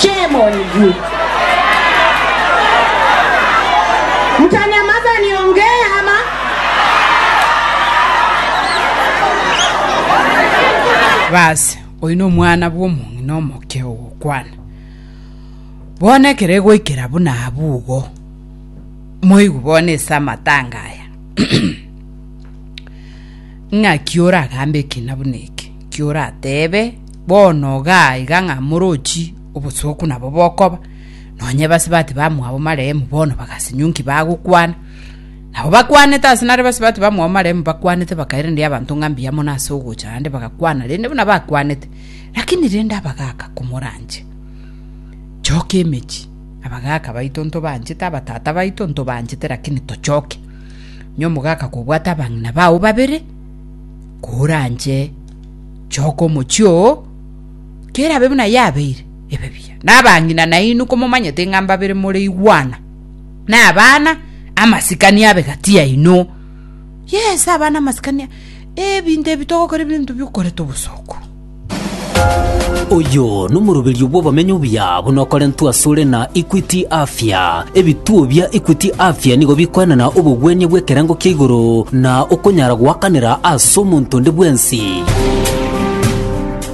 Shame on you! Mtanyamaza niongee ama? Baasi, oyio nomwana bw'omong'ina omoke ogokwana. Bono ekero egoikera buna abwo igo, moigwe bono ase amatanga aya, ng'aki oragambe ekina buna eke, ki orateebe, Bono igaa iga ng'a morochi obosooku nabo bokoba, nonya ebasibati bamwabo marehemu bono bagasinyunki bagokwana. Nabo bakwanete ase nare ebasibati bamwabo marehemu bakwanete bakairendia abanto ng'a mbuya mono ase ogocha aande bagakwana rende buna bakwanete, lakini rende abagaaka komoranche. Choka emechie, abagaaka baito ntobanchete, abatata baito ntobanchete lakini tochoke. Onye omogaaka kobwate abang'ina bao babere, koranche Choka omochie oo, kerabe buna yabeire, ebe buya. Nabang'ina nainwe komomanyete ng'a mbabere more igwana, na abana amasikani abe gati yaino. Yes, abana amasikani a- ebinto ebi togokora ebinto biokoreta obosooku. Oyo nomoroberio bw'obomenyo obuya buna okorentwe asore na Equity Afya. Ebituo bia Equity Afya nigo bikoenana obogwenia bw'ekerengo kia igoro na okonyara goakanera ase omonto onde bwensi.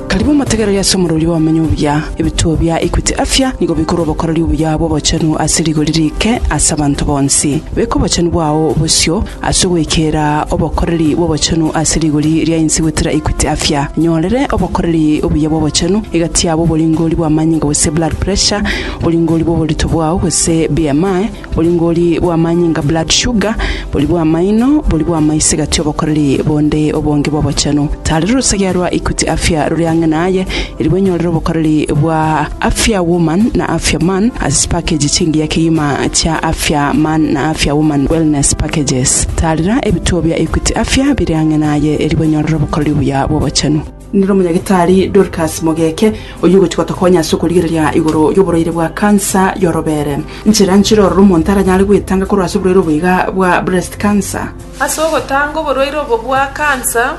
Karibu omotegereri ase omorori bw'obumenyi obuya. Ebituo bia Equity Afya nigo bikore obokoreri obuya bw'obochenu ase rigori rike ase abanto bonsi. Beka obochenu bwao bosio ase ogoikera obokoreri bw'obochenu ase rigori ria inse goetera Equity Afya. Nyorere obokoreri obuya bw'obochenu egati yabo oboringori bw'amanyinga gose blood pressure, Oringori bw'oborito bwao, gose BMI, oringori bw'amanyinga, blood sugar, bori bw'amaino, bori bw'amaiso egati obokoreri bonde obonge bw'obochenu. Tari rorosagia rwa Equity Afya rore ang'e naye, eri bwenyorere obokoreri bwa Afya Woman na Afya Man ase chipakeji chingiya kegima chia Afya Man na Afya Woman Wellness Packages. Taarera ebituo bia Equity Afya bire ang'e naye eri bwenyorere obokoreri buya bw'obochenu. Nere omonyagitari Dorcas Mogeke, oyio ogochia gotokonya ase okorigereria igoro y'oborwaire bwa cancer y'orobere. Nchera nchire ororo omonto aranyare gwetanga korwa ase oborwaire obo iga bwa breast cancer. Ase ogotanga oborwaire obo bwa cancer,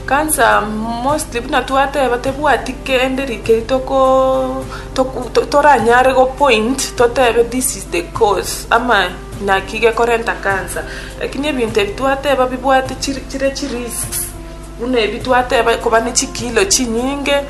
cancer mostly buna twateba tebwati kende rikeri toko toku to toranyare go point totebe this is the cause ama naki gekorenta cancer. Lakini ebinto ebi twateba bibwate chiri chire chirisks. Buna ebi twateba, koba ne chikiilo chinyinge,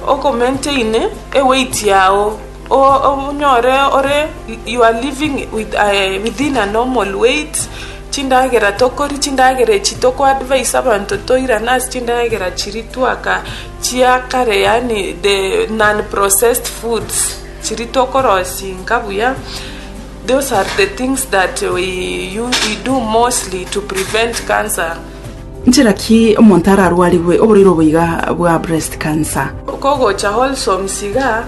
okomaintaine eweight yao, onyore ore, you are living with a, within a normal weight, chindagera tokoria, chindagera echi toko advise abanto toirane ase chindagera chiria twaka chia kare yaani the non processed foods, chiria tokorosinga buya, those are the things that we u, we do mostly to prevent cancer. Nchera ki omonto ararwarigwe oborwaire obo iga bwa breast cancer? Kogocha Wholesome Siga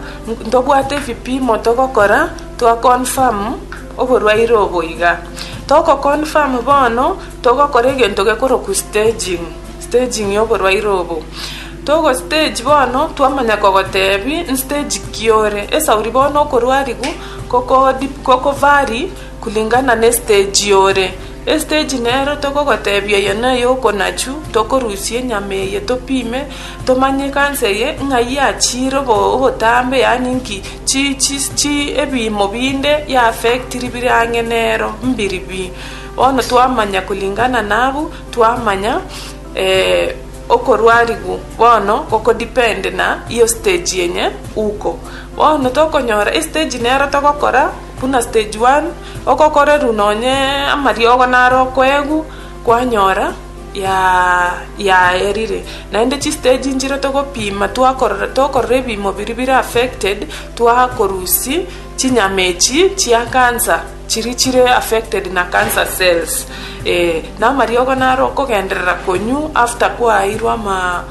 ntobwate ebipimo togokora twa confirm oborwaire obo iga. Toko confirm bono togokora egento gekorokwa staging, staging ya oborwaire obo. Togo stage bono twamanya kogotebi nstage ki ore. Esauri bono okorwarigu koko vary kulingana ne stage ore. Estage nero tokogotebia eye neye okonachu tokorusia enyama eye topime tomanye ekansa eye ng'a yachiire obotambe yaani nki chi chi chi ebiimo binde ya affect ribire ang'e nero mbiri bi. Bono twamanya kulingana na abwo twamanya okorwarigwa bono goko depend na hiyo stage yenye uko. Bono tokonyora estage nero togokora buna stage one Okokoreru nonye amariogo naro okoegu kwanyora ya yaerire naende chi stage nchire togopima twakorora tokorora ebimo biri bire affected twakorusi chinyama echi chia cancer chiri chire affected na cancer cells eh, na amariogo naro okogenderera konywa after kwaeirwe ama.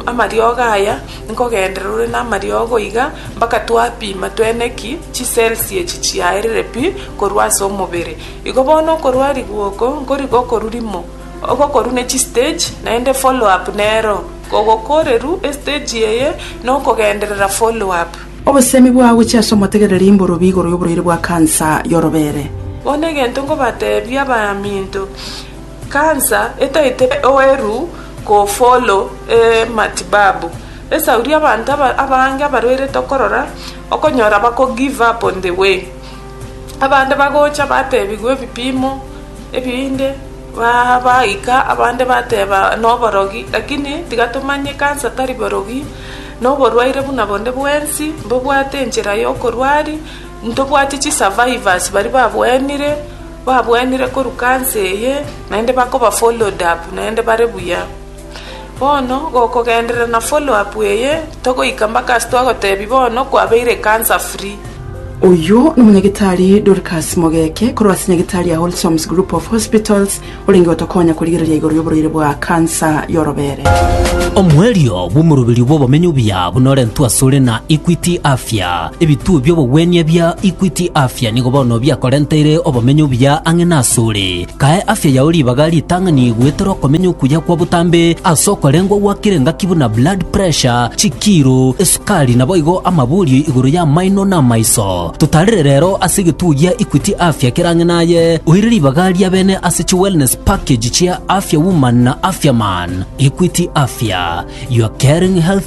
Amariogo aya nkogenderera ore namariogo iga mpaka twapima twene ki chicells echi chiaerire pi korwa ase omobere. Igo bono okorwa riguoko nkori gokoru rimo ogokoru ne chistage naende follow up nero ogokoreru estage eye nokogenderera follow up. Obosemi bwagochia ase omotegereri mborobia igoro yoborwaire bwa cancer yorobere. Bono egento nkobatebia abaminto, Kansa etaete oeru kofolo e matibabu esauri abanto abange abarwaire tokorora okonyora bako give up on the way abande bagocha batebigwa ebipimo ebinde baika abande bateba noborogi lakini tiga tomanye kansa tari borogi noborwaire buna bonde bwensi mbobwate enchera yokorwari ntobwati chi survivors baria babwenire. Babwanire korwa kanse eye, naende bakoba followed up, naende bare buya. Bono gokogenderera na follow up eye, togoika mpaka ase twagotebia bono kwabeire ekansa free. Oyio n'Omonyagetari Dorcas Mogeke korwa ase Nyagetari ya Wholesomes Group of Hospitals orenge gotokonya korigereria igoro y'oborwaire bwa kansa y'orobere. Omoerio bw'omoroberio bw'obomenyo buya buna orentwe asore na Equity Afya. Ebituo bi'obogwenia bia Equity Afya nigo bono biakorenteire obomenyo obuya ang'e nasore. Kae afya yao ribaga ritang'ani goetera okomenya okuya kwa botambe ase okorengwa gwakire ngaki buna blood pressure, chikiiro, esukari naboigo amaborio igoro y'amaino na amaiso. Totarere rero ase egetuo gia Equity Afya kere ang'e naye, oire ribaga ria bene ase chi wellness package chia Afya Woman na Afya Man. Equity Afya, your caring health